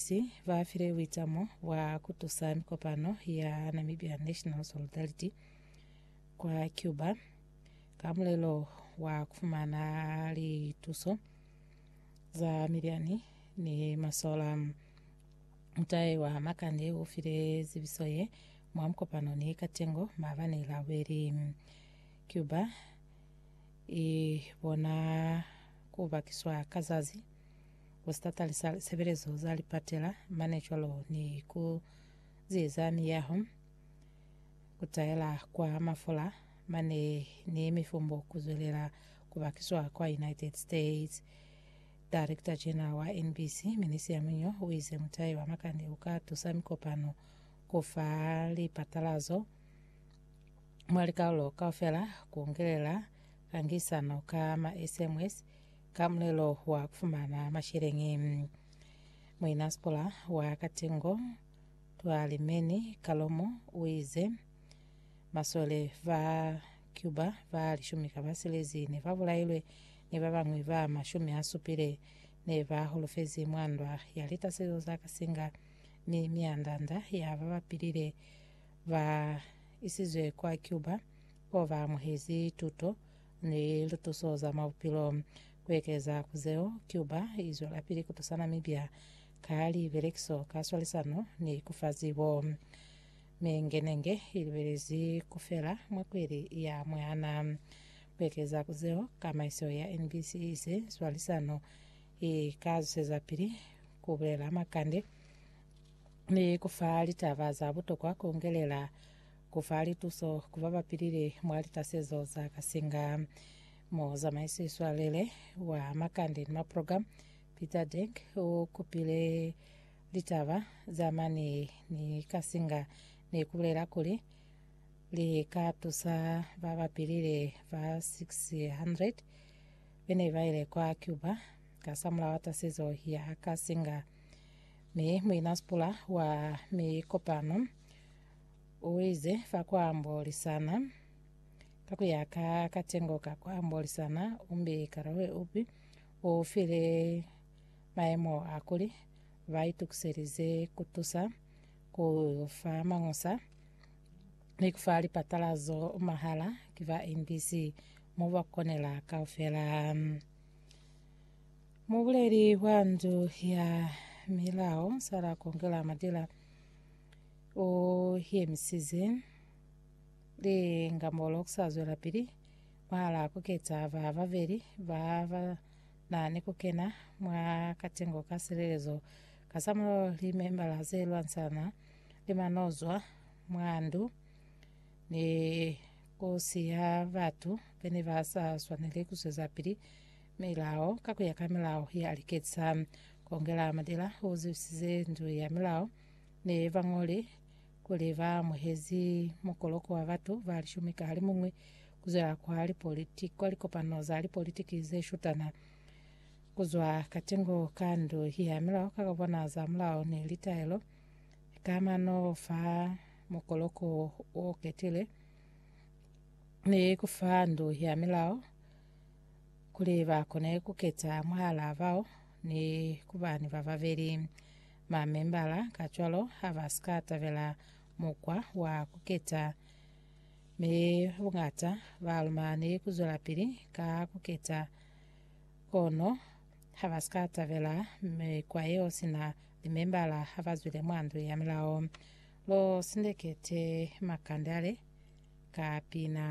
Bapesti ba file buitamo bwa ku tusa mikopano ya Namibia National Solidarity kwa Cuba ka mulelo wa ku fumana lituso za miliani ni masola. Mutahe wa Makande u file zibiso ye mwa mukopano ni Katengo maabani Laweli. Cuba i bona ku bakiswa ka zazi ku si tatalisa lisebelezo za lipatela mane cwalo ni ku zieza miyaho, ku taela kwa mafola mane ni mifumbo ku zwelela ku bakiswa kwa United States. Director General wa NBC, Minisia Munyo, o ize mutai wa makani u ka tusa mikopano ku fa lipatalazo mwa likaulo kaufela ku ngelela kangisano ka ma SMS Ka mulelo wa kufumana masheleñi, muinasikola wa Katengo Twalimeni Kalomo uize, Masole ba Cuba ba lishumi ka ba silezi ne ba bulailwe, ni babañwi ba mashumi a supile ne ba holofezi mwa ndwa ya litasezo za kasinga, mi mianda-nda ya ba ba pilile ba isizwe kwa Cuba bao ba amuhezi tuto ni lituso za mwa bupilo. Ku ekeza ku zeo, Cuba i zwelapili ku tusa Namibia ka libelekiso, ka swalisano ni ku fa zibo. Mi nge ne nge i libelezi ku fela mwa kweli ya mwana. Ku ekeza ku zeo, kamaiso ya NBC i ize swalisano i ka zwezapili ku bulela makande ni ku fa litaba za butokwa ku ngelela Ku fa lituso ku ba ba pilile mwa litasezo za kasinga. Mo zamaiso i swalele wa makande ni maprogramu, Peter Denk u kupile litaba za mane ni kasinga ne ku bulela kuli, Li ka tusa ba ba pilile ba 600 be ne ba ile kwa Cuba kasamulaho wa tasezo ya kasinga. Mi muinasipula wa mikopano, Uize, Fa kwa ambolisana, ka kuya ka katengo ka kwa ambolisana, umbi karolwe upi u file maemo a kuli ba itukiselize ku tusa ku fa mañusa ni ku fa lipatalazo mahala ki ba NBC mo ba konela kaufela. Mubuleli wa ndu ya milao, Sarah Kongela Madila, U yemisize lingambolo ku sa zwelapili mwahalaa ku keta ba babeli ba ba na ni ku kena mwa katengo ka silelezo kasamulaho li membala ze lwansana ni manozwa mwa ndu ni ku siya batu bene ba sa swaneli ku zwezapili milao ka ku ya ka milao ya liketisa. Ku ongela madila u zwisize ndu ya milao ne ba ñoli kuli ba amuhezi mukoloko wa batu ba lishumi ka halimuñwi ku zwela kwa lipolitiki kwa likopano za lipolitiki ze shutana ku zwa katingo ka ndu ya milao ka kabona za mulao ni litaelo ka mano fa mukoloko o ketile ni ku fa ndu ya milao kuli ba kone ku keta mwahala bao ni ku ba ni ba babeli. Mamembala kacwalo ha ba si ka tabela mukwa wa ku keta, mi buñata ba lumani ku zwelapili ka ku keta. Kono ha ba si ka tabela mikwa yeo sina limembala ha ba zwile mwa Ndu ya Milao. Lo sindekete makande ale ka pina.